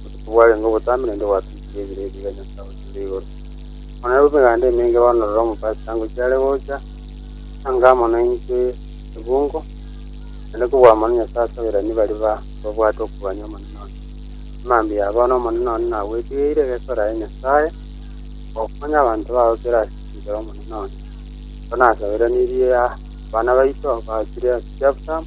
Botuko bwarenge obotambe naende gwatwikire ebiro ebi bia Nyasae oyochire igoro. Bono nabwo emeganda emenge baonorera omopasita ngochia are gocha, anga amo naintwe ebungo, naende kobwamwa na Nyasae ase abairani baria ba babwate okogania Omonene one. Amambia aya bono Omonene one nagwetigeire egesore aye Nyasae, gokonya abanto bao kera ase enchera Omonene one. Ekero nasaberanirie abana baito baachire ase chiabusamu,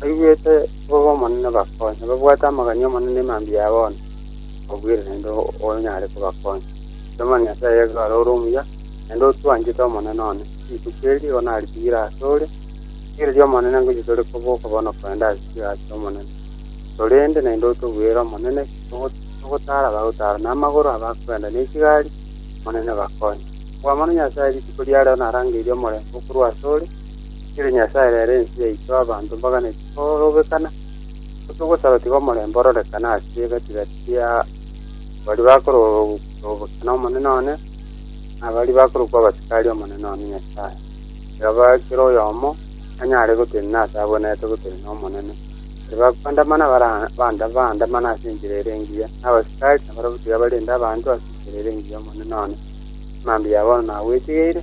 Baigwete bobe Omonene bakonye, babwate amang'ana y'Omonene ne mambia ya bono obwire naende onyare kobakonya. Inche Omonene Nyasae yaito naro ore omuya, naende otwanchete Omonene one. Rituko eri nigo naritiire asore, rigereria Omonene ngochia tore koboka bono kogenda ase chiraa chi'Omonene. Torende naende otobuere Omonene, togotara abagotara, na amagoro abakogenda ne chigari, Omonene bakonye. Okwamana Nyasae rituko ria rero narangeirie omorembe okorwa asore, Riire Nyasae rere ense yaito abanto mbaganeti korobekana, otogosaba tiga omorembe ororekane ase gati gati ya baria bakorobekana Omonene one, na baria bakorokwa abasikari Omonene one Nyasae, tiga kera oyomo anyare gotenena ase abwenerete gotenena Omonene. Baria bakoandamana baandamane ase enchera ere engiya, na abasikari nabarabwo tiga barende abanto ase enchera ere engiya Omonene one, amambia abo nagwetigeirie.